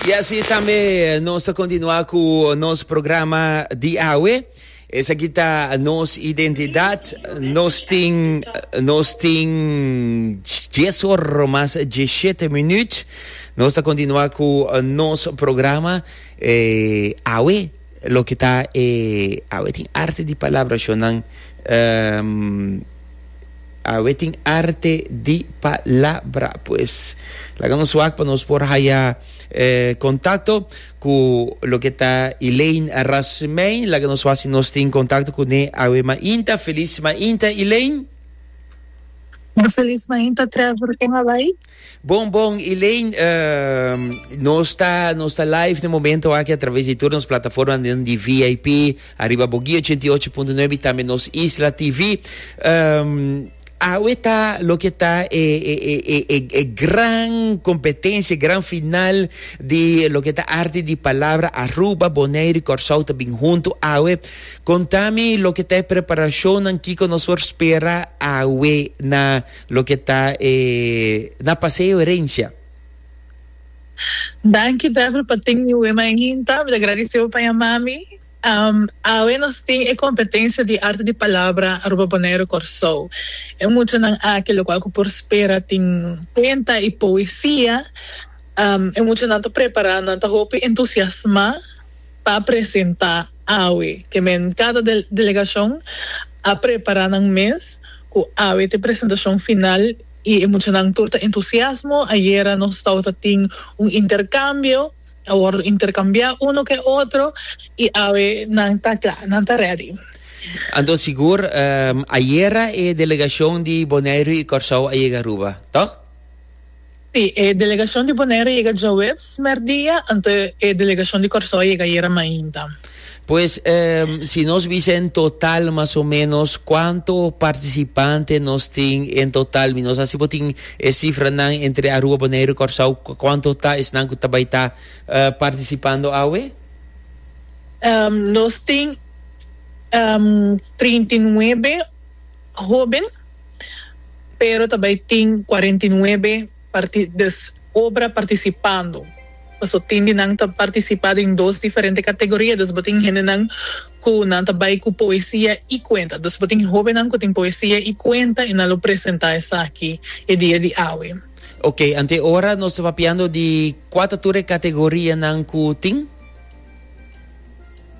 Y así tambe nos ta continua cu nos programa di awe. Esaki ta nos identidad. Nos tin, nos tin dies or mas diecisiete minuut. Nos ta continua cu nos programa eh, awe. Loke ta e awe tin arte di palabrashonnan awe tin arte di palabra pues laga nos wak pa nos por haya contacto cu loke ta Elaine Rasmijn laga nos wak si nos tin contacto cu ne awe mainta feliz mainta Elaine. Feliz mainta tres ora con a bay. Bon bon Elaine, uh, nos ta nos ta live no momento aki a través de todos nos plataforma de VIP arriba Bogi 88.9 y también nos Isla TV. Um, awe ta lo que ta e, e, e, e, e, e gran competencia, gran final de lo que ta arte de palabra Aruba, Bonaire y Corsau ta bin junto awe. Contame lo que ta e preparación en Kiko nos por spera awe na Loke ta e na paseo herencia. Danki Dafne pa tin mi wema en hinta, mi ta gradisebo pa yama mi. Awe nos tin e competencia di Arte di Palabra Aruba Bonaire Corsou. E muchanan aki locual cu por spera tin cuenta y poesia. E muchanan ta prepara, nan ta hopi entusiasma. pa presenta awe ke men kada delegashon a prepara nan mes ku awe te presentashon final i e muchanan tur ta entusiasmo ayera nos tau ta tin un interkambio a wordo interkambiá uno ku e otro i awe nan ta kla nan ta redi. Anto sigur ayera e delegashon di Boneiru i Kòrsou a yega Aruba tòg? Sí, e delegacion di Bonaire a yega djoeps merdia, anto e delegacion di Corsou a yega ayera mainta. Pues si nos bisa en total mas o menos cuanto participante nos tin en total mi no sa si bo tin e cifranan entre Aruba, Bonaire y Corsou cuanto ta esnan cu ta bay ta participando awe? Nos tin trinta y nuebe. Hoben, pero ta bai tin cuarenta y nuebe parti des obra participando. Paso tin di nan ta participa den dos diferente categoria, dus bo tin hendenan cu nan ta bai cu poesia y cuenta. Dus bo tin hobennan cu tin poesia y cuenta y nan lo presenta esaki e dia di awe. Ok, ante ora nos ta papiando di cua ta tur e categorianan cu tin?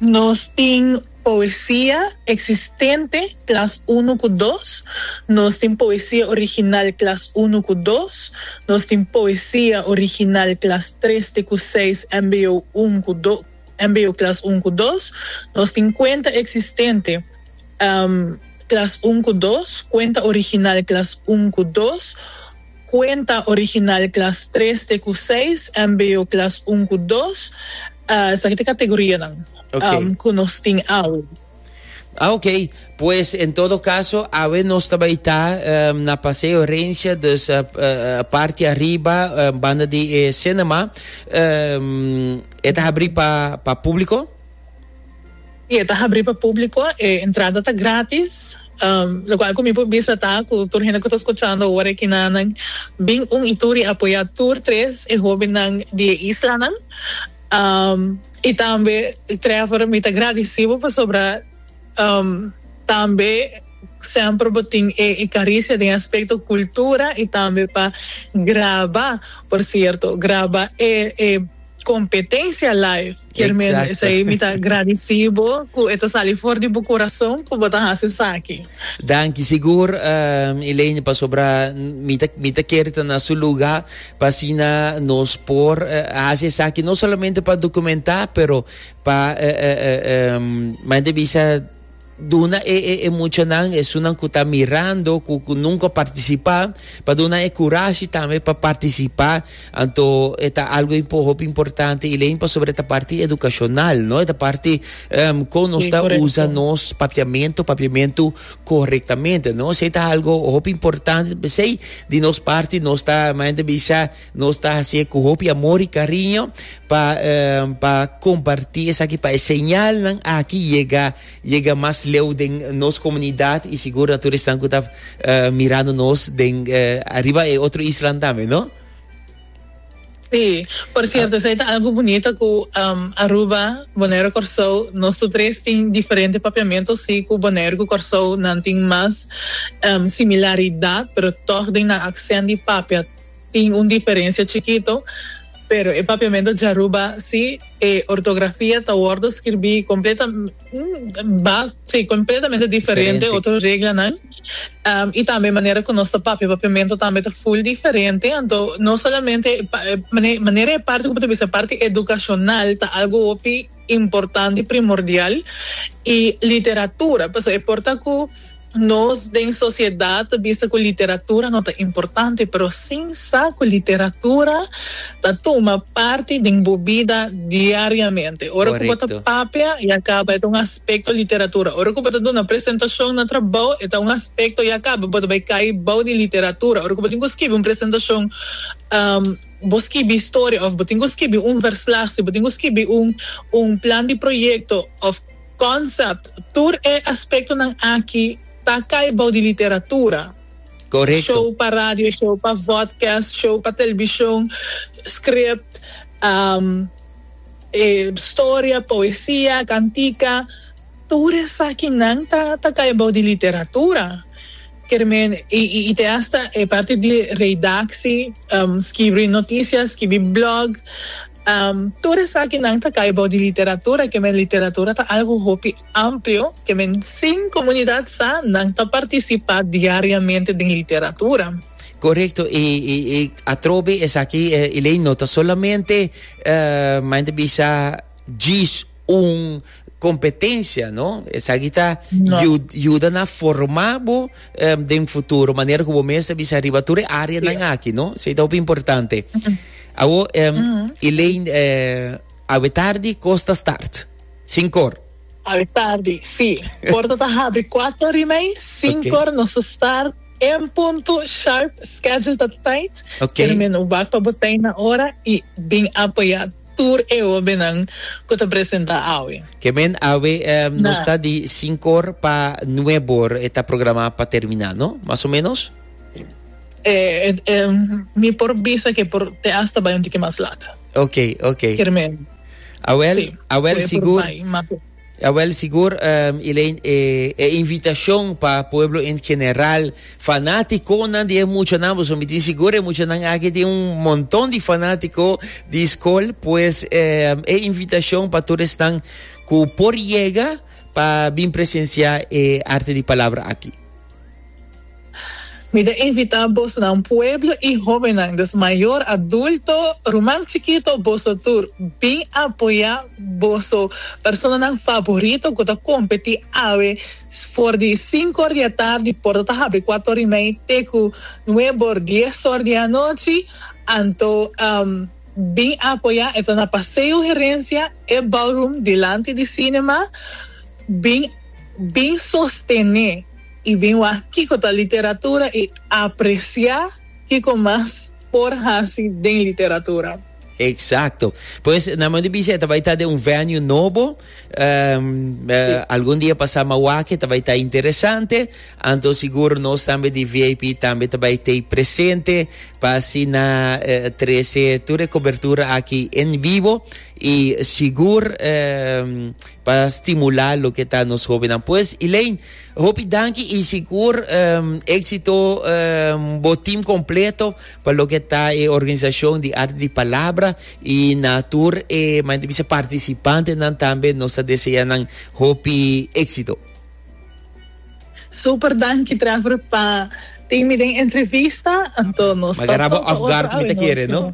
Nos tin. Poesia eksistente, klas unu ku dos, Nos tin poesia original klas unu ku dos, Nos tin poesia original klas tres te ku seis mbo un ku do mbo klas un ku dos, Nos tin kuenta eksistente klas un ku dos, kuenta original klas un ku dos, Cuenta original klas tres te ku seis, mbo klas un ku dos. Esaki ta e kategorianan ku nos tin awe. Ah ok, pues en todo caso awe nos ta bay ta na Paseo Rencia, dus parti ariba banda di e cinema e ta habri pa publico? I e ta habri pa públiko, e entrada ta grátis, lokual ku mi por bisa ta ku tur hende ku ta skuchando ora e kinanan bin un i tur i apoyá tur tres e hóbennan di e islanan. I tambe, Trevor, mi ta gradisí bo pasobra tambe semper bo tin e karisia den aspekto kultura i tambe pa graba, por sierto, graba e kompetensia live. Kermen, esei mi ta gradici bo cu e ta sali for di bo corazon cu bo ta haci esaki. Danki sigur Elaine pasobra mi ta mi ta kere ta na su lugar pa asina nos por haci esaki no solamente pa documenta pero pa manda bisa Duna e e e muchanan, esunnan ku ta mirando, ku ku nunka partisipá, pa duna e kurashi tambe pa partisipá. Anto e ta algu impo hopi importante, Elaine, pasobra e ta parti edukashonal, no? E ta parti em, kon nos Sí, ta usa korekto. nos papiamentu, papiamentu korektamente, no? Esei ta algu hopi importante, p'esei di nos parti nos ta mainta bisa Nos ta hasié ku hopi amor i kariño pa pa kompartí esaki pa e señalnan aki yega yega mas leu den nos komunidat i sigur na tur esnan ku ta mirando nos den ariba e otro islanan tambe, no? Sí, por cierto esei ta algo bunito ku Aruba, Bonaire, Kòrsou nos tur tres tin diferente papiamentu si ku Bonaire ku Kòrsou nan tin mas similaridat pero tòg den nan aksènt di papia Tin un diferensia chikito, pero e papiamentu djaruba si e ortografia ta wòrdu skirbí kompletamente diferente, otro reglanan i tambe manera ku nos ta papia papiamentu tambe ta ful diferente. Anto no solamente manera e parti ku bo ta bisa parti edukashonal ta algu hopi importante i primordial i literatura pasobra e por ta ku. Nos den sociedad ta bisa cu literatura no ta importante, pero sin sa cu literatura ta tuma parti den bo bida diariamente. Ora cu bo ta papia y a caba e ta un aspecto literatura. Ora cu bo ta duna presentacion na trabao e ta un aspecto y a caba bo ta bay cay bao di literatura. Ora cu bo tin cu scibi un presentacion, bo scibi historia of bo tin cu scibi un verslag, si bo tin cu scibi un plan di proyecto of. Concept, Tur e aspectonan aki ta cay bou di literatura. Correcto. Show pa radio, show pa vodcast, show pa television, script, storia, poesia, cantica, tur esakinan ta cay bou di literatura. Kermen, y te hasta e parti di redacci, skibri noticia, skibi blog. Tur esakinan ta kai bou di literatura, ke men literatura ta algu hopi amplio, ke men sin komunidat sa nan ta partisipá diariamente den literatura. Korekto, i atrobe esaki e lei no ta solamente, maña ta bisa, djis un competencia no esaki ta yuda na forma bo den futuro manera cu bo mes ta bisa riba tur e area nan aki no so ta hopi importante awo Elaine awe tardi cos ta start sincor awe tardi si porta ta habri cuatro ori mei sincor nos ta start en punto sharp schedule ta tight pero mi no wak pa bo tey na ora y bin apoya. Tur e hobennan cu ta presenta awe. Ke men awe nos ta di sinkor pa nuebor e ta programa pa termina no? Mas o menos? Mi por bisa ke por te hasta bai un tiki mas later. Oke oke. Ker men. Awel awel sigur. Jawel, sigur, Elaine, e e invitashon pa pueblo en general, fanatikonan di e muchanan, boso mi tin sigur e muchanan aki tin un monton di fanatiko di skol, pues e invitashon pa tur esnan ku por yega pa bin presensiá e Arte di Palabra aki. Mi ta invita bosnan pueblo y hobennan des mayor, adulto, ruman chikito boso tur bin apoya boso personanan favorito cu ta competi awe for di cinco or di atardi porta ta habri cuato or y mei te cu nuebe or dies or di anochi anto bin apoya e ta na Paseo Herencia e ballroom dilanti di cinema bin bin sostene I bin wak kiko ta literatura i apresiá kiko mas por hasi den literatura. Eksakto. Pues nan manda bisha e ta bai ta den un venue nobo. Si. Algun dia pasá mas wak e ta bai ta interesante. Anto sigur nos tambe di VIP tambe ta bai t'ei presente pa asina trese tur e kobertura aki en vivo i sigur pa stimulá loke ta nos hóbennan. Pues, Elaine. Hopi danki y sigur exito bo team completo pa loke ta e organisacion di Arte di Palabra y na tur e manda bisa participantenan tambe nos ta desea nan hopi exito. Super danki Trevor pa tin mi den entrevista, anto nos ta tokba otro awe no Simo.